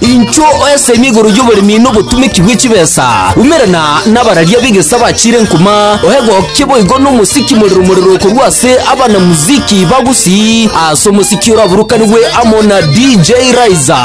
Inchuo oesemi igoro y'oboremi na obotumeki bwe chibesa, umerana nabararia b'egesa bachiire nkuma, oegokie boigo nomosiki morero morero korwa ase abanamuziki ba Gusii ase omosiki oraburukanigwe amo na DJ Raiza.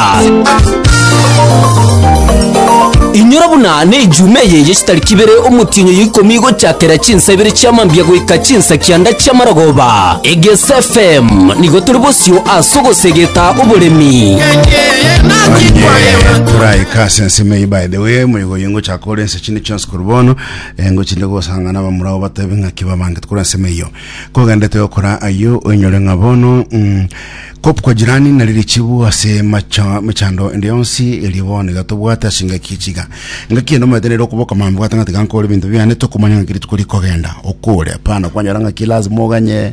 Inyora buna ne ejuma eye ye chitariki ibere omotienyo ya ikomi gochakera chinsa ibere chia mambia goika chinsa kianda chia maragoba. Egesa FM nigo tore bosio ase ogosegeta oboremi. Onye toraika ase ensemo eye by the way moigo oyo ngochaka kore ense chinde chionsi korwa bono eh, ngochinde gosang'ana abamura abo batebe ng'aki babange tokora ensemo eyo kogendete gokora ayio oinyore ng'a bono mm, kop kwa jirani nari richibu ase macha- mechando ende yonsi erio bono iga tobwate ase engaki echiga engaki ende omanyete nere okoboka mambe gwatang'ata iga nkore ebinto biane tokomanya ng'aki rituko rikogenda okore hapana kwanyora ng'aki lazima oganye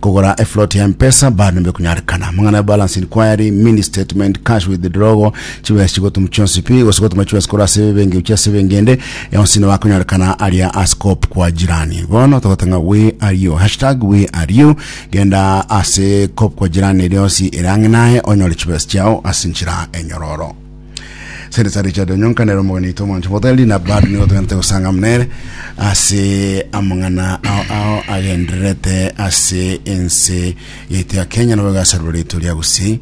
Kogora eflot ya mpesa bado nibekonyarikana. Amang'ana ya balance inquiry, mini statement, cash withdrawal, chibesa chigotum chionsi pi, gose gotuma chibesa korwa ase ebenki gochia ase ebenki ende, yonsi nabo akonyarekana aria ase coop kwa jirani. Bono togotanga we are you, hashtag we are you, genda ase coop kwa jirani eri yonsi ere ang'e naye onyore chibesa chiao ase enchera enyororo. sente sa richard onyonkanera omogeni oito omwancho motari na bado nigo togente gosanga mnere ase amang'ana ao ao agendererete ase ense yaito ya kenya nabo gasarwa rito ria gusii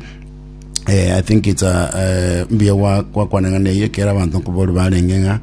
Eh, I think it's a eh, mbuya gwa- gwakwaneng'ana eye kera abanto nkobori barenge ng'a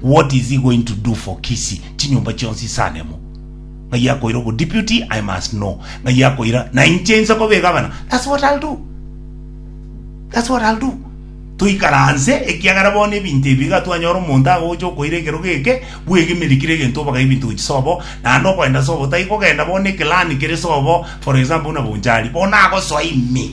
What is he going to do for Kisii? Chinyomba chionsi ase anemo. Ng'ai akoira obo deputy? I must know. Ng'ai akoira na inche inse koba egabana? That's what I'll do. That's what I'll do. Toikaranse ekiagera bono ebinto ebi iga twanyora omonto agocha okoira ekero geke bwegemerikire egento obaga ebinto gochia sobo naende okoenda sobo tai kogenda bono ne clan kere sobo for example buna Bonchari bono agosoa ime.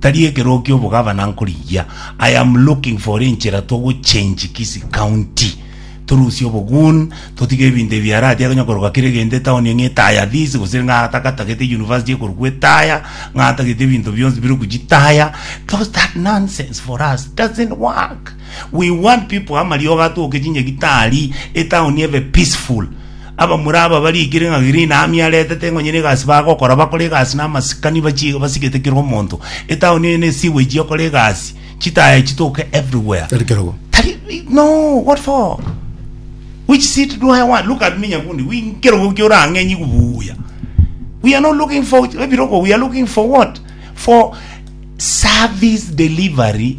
Tari ekeroo kia obogavana nkorigia. I am looking for enchera togo change Kisii county. Torusie obogun, totige ebinto ebi biaratia konya koroka kere gento etown eng'e etaya this gose ng'a tagatagete university ekorokwa etaya, ng'a atagete ebinto bionsi bire gochitaya. Those that nonsense for us doesn't work. We want people amariogo atoke chinyegi tari, etown ebe peaceful. Abamura aba bariikire ng'a green army aretete ngonye negasi bagokora bakore egasi na amasikani bachie basigete kera omonto etaoni eye ne sewage okore egasi chitaya chitoke everywhere Tari kerogo. Tari, no what for which seat do I want look at me nyakundi we nkerogo kia orang'enyi kubuya we are not looking for ebirogo we are looking for what for service delivery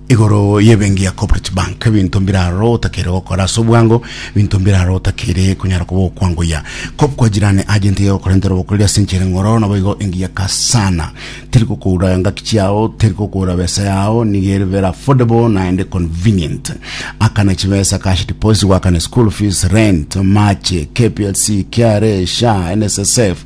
Igoro y'ebenki ya Corporate Bank, ebinto mbiraro otakeire gokora ase obwango, ebinto mbiraro otakeire konyara koba okwangoyia. Kop kwa jirani agent iga egokorentera obokoreri ase enchera eng'oro, naboigo engiya ka sana. Teri kokoura engaki chiao, teri kokoura besa yao, nigo ere very affordable naende convenient. Akana chibesa, cash deposit, goakana school fees, rent, mache, KPLC, KRA, SHA, NSSF,